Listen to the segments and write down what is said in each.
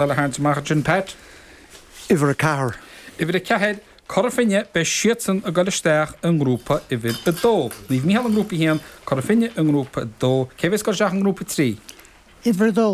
Ball a tharraingt amach ansin, Pat. Uimhir a ceathair. Uimhir a ceathair, Cora Finne, beidh siadsan ag dul isteach i ngrúpa uimhir a dó. Naomh Micheál i ngrúpa a haon, Cora Finne i ngrúpa a dó. Cé a bheas ag dul isteach i ngrúpa a trí? Uimhir a dó.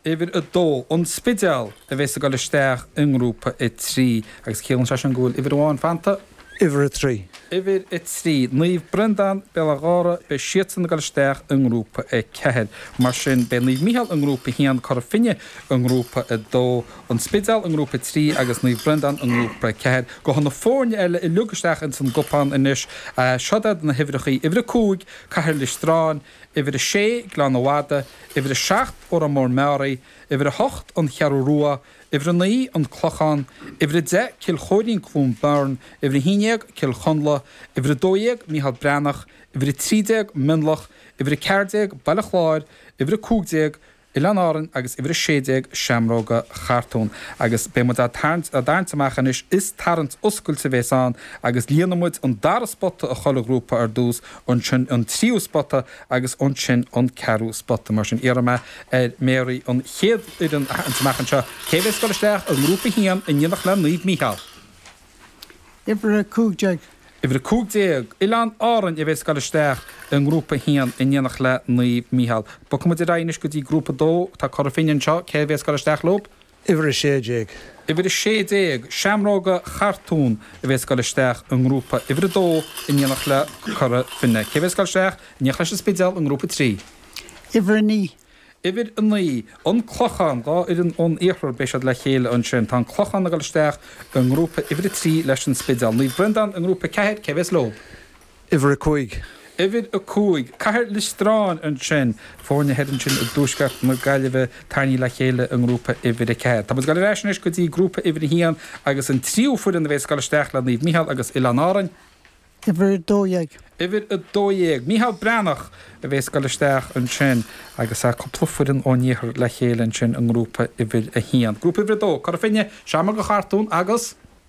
Uimhir a dó, An Spidéal, a bheas ag dul isteach i ngrúpa a trí agus ciallann sé sin go bhfuil uimhir amháin fanta. Uimhir a Trí. Uimhir a Trí, Naomh Breandán, Béal Átha Ghártha, beidh siadsan ag dul isteach i nGrúpa 4. Mar sin beidh Naomh Micheál i nGrúpa 1, Cora Finne i nGrúpa 2, An Spidéal i nGrúpa 3 agus Naomh Breandán i nGrúpa 4. Gabhfaidh na foirne eile uilig isteach ins an gcupán anois. Seod iad na huimhreachaí, Uimhir a Cúig, Cathair Loistreáin, Uimhir a Sé, Gleann an Mhadaidh, Uimhir a Seacht, Órán Mór Meáraí, Uimhir a hOcht, An Cheathrú Rua, Uimhir a naoi, An Clochán, Uimhir a deich, Cill Chóirín-Cluain Bheirn, Uimhir a haon déag, Cill Chonla, Uimhir a dó dhéag, Micheál Breathnach, Uimhir a trí déag, Mionlach, Uimhir a ceathair déag, Baile Chláir, Uimhir a cúig déag, Oileáin Árainn agus Uimhir a sé déag, Seamróga Chartún. Agus beidh muid á dtarraingt amach anois, is tarraingt oscailte a bheas ann agus líonfaidh muid an dara spota i chuile ghrúpa ar dtús, ansin an tríú spota agus ansin an ceathrú spota. Mar sin iarrfaidh mé ar Mary an chéad fhoireann a tharraingt amach anseo. Cé a bheas ag dul isteach i nGrúpa 1 in éineacht le Naomh Mícheál? Uimhir a cúig déag. Uimhir a cúig déag, Oileáin Árainn a bheas ag dul isteach i nGrúpa 1 in éineacht le Naomh Mícheál. Bogfaidh muid ar aghaidh anois go dtí Grúpa 2. Tá Cora Finne anseo. Cé a bheas ag dul isteach leo? Uimhir a Sé Déag. Uimhir a Sé Déag, Seamróga Chartún, a bheas ag dul isteach i nGrúpa Uimhir a Dó in éineacht le Cora Finne. Cé a bheas ag dul isteach in éineacht leis an Spidéal i nGrúpa a Trí? Uimhir a Naoi. Uimhir a Naoi, An Clochán, Dhá fhoireann ón Iarthar beidh siad le chéile ansin. Tá an Clochán ag dul isteach i nGrúpa Uimhir a Trí leis an Spidéal. Naomh Breandán i nGrúpa a Ceathair, cé a bheas leo? Uimhir a cúig. Uimhir a cúig, Cathair Loistreáin ansin, foirne thoir ansin i dtuaisceart na Gaillimhe, tarraingthe le chéile i ngrúpa uimhir a ceathair. Tá muid ag dul ar ais anois go dtí grúpa uimhir a haon agus an tríú foireann a bheas ag dul isteach le Naomh Micheál agus Oileáin Árainn. Uimhir a dó dhéag. Uimhir a dó dhéag, Micheál Breathnach, a bheas ag dul isteach ansin agus tá cúpla foireann ón iarthar le chéile ansin i ngrúpa uimhir a haon. Grúpa uimhir a dó, Cora Finne, Seamróga Chartún agus.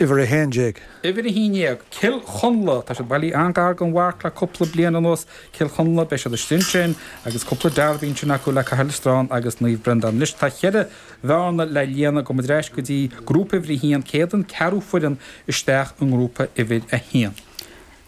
Uimhir a haon déag. Uimhir a haon déag, Cill Chonla. Tá siad bailithe an-ghar don mharc le cúpla bliain anuas. Cill Chonla, beidh siad istigh ansin agus cúpla derby ansin acu le Cathair Loistreáin agus Naomh Breandán. Anois tá cheithre bhearna le líonadh, gabhfaidh muid ar ais go dtí grúpa uimhir a haon, cé hiad an ceathrú foireann isteach i ngrúpa uimhir a haon?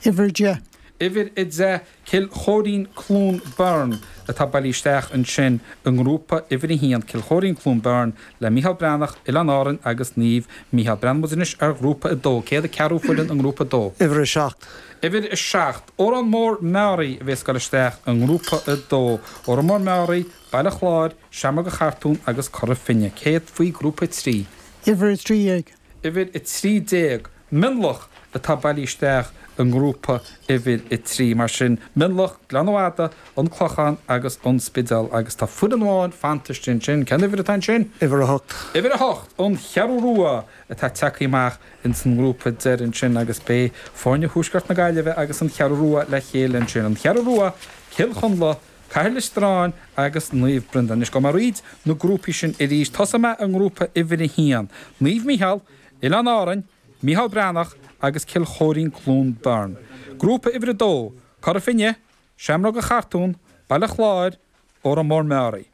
Uimhir a deich. Uimhir a deich, Cill Choirín-Cluain Bheirn atá bailí isteach ansin i nGrúpa Uimhir 1, Cill Choirín-Cluain Bheirn le Micheál Breathnach, Oileáin Árainn agus Naomh Micheál. Breathnóidh muid anois ar Ghrúpa 2, céard é an ceathrú foireann i nGrúpa 2. Uimhir 7. Uimhir 7, Órán Mór-Meáraí a bheas ag goil isteach i nGrúpa 2, Órán Mór-Meáraí, Baile Chláir, Seamróga Chartúin agus Cora Finne, céard faoi Ghrúpa 3. Uimhir 13, Uimhir 13, Mionlach atá bailí isteach i nGrúpa Uimhir 3, mar sin, Mionlach, Gleann an Mhadaidh, An Clochán agus An Spidéal agus tá foireann amháin fanta istigh ansin. Cén uimhir atá ansin? Uimhir 8. Uimhir 8, An Cheathrú Rua atá tagtha amach ins an ngrúpa deiridh ansin agus beidh foirne Thuaisceart na Gaillimhe agus An Cheathrú Rua le chéile ansin. An Cheathrú Rua, Cill Chonla. Cathair Loistreáin agus Naomh Breandán. Anois gabhfaidh mé thríd na grúpaí sin arís, tosóidh mé i ngrúpa uimhir a haon, Naomh Micheál, Oileáin Árainn, Micheál Breathnach agus Cill Choirín Cluain Bheirn. Grúpa uimhir a dó, Cora Finne, Seamróga Chartúin, Baile Chláir, Órán Mór Meáraí.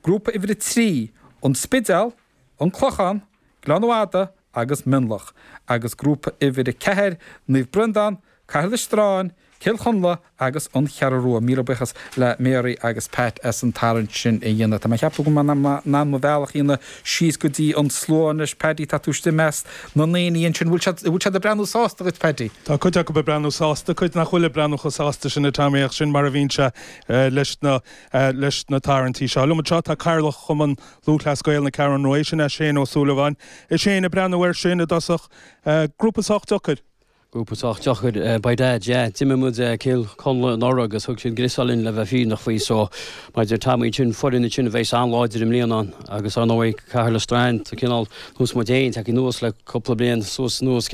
Grúpa uimhir a trí, An Spidéal, An Clochán, Gleann an Mhadaidh agus Mionlach, agus grúpa uimhir a ceathair, Naomh Breandán, Cathair Loistreáin, Cill Chonla agus An Cheathrú Rua. Míle buíochas le Mary agus Pat as an tarraingt sin a dhéanamh. Tá mé ag ceapadh go mbeidh mé in ann mo bhealach a dhéanamh síos go dtí an slua anois. Paddy, tá tú istigh i measc na ndaoine ansin. Bhfuil siad, bhfuil siad ag breathnú sásta dhuit, Paddy? Tá cuid acu ag breathnú sásta, cuid nach bhfuil ag breathnú chomh sásta sin a Tommy, ach sin mar a bhíonn sé leis na, leis na tarraingtí seo. Liom anseo tá Cathaoirleach Chumann Lúthchleas Gael na Ceathrún Rua sin é Shane Ó Súilleabháin. Shane, ag breathnú air sin i dtosach. Grúpa sách deacair. Grúpa sách deacair. By Dad, yeah. D'imir muid Cill Chonla anuraidh agus thug siad greasáil dhúinn le bheith fírinneach faoi so mar a deir Tommy ansin foireann í sin a bheas an-láidir i mbliana agus ar ndóigh Cathair Loistreáin cineál ar nós muid féin tagtha anuas le cúpla bliain suas anuas Cill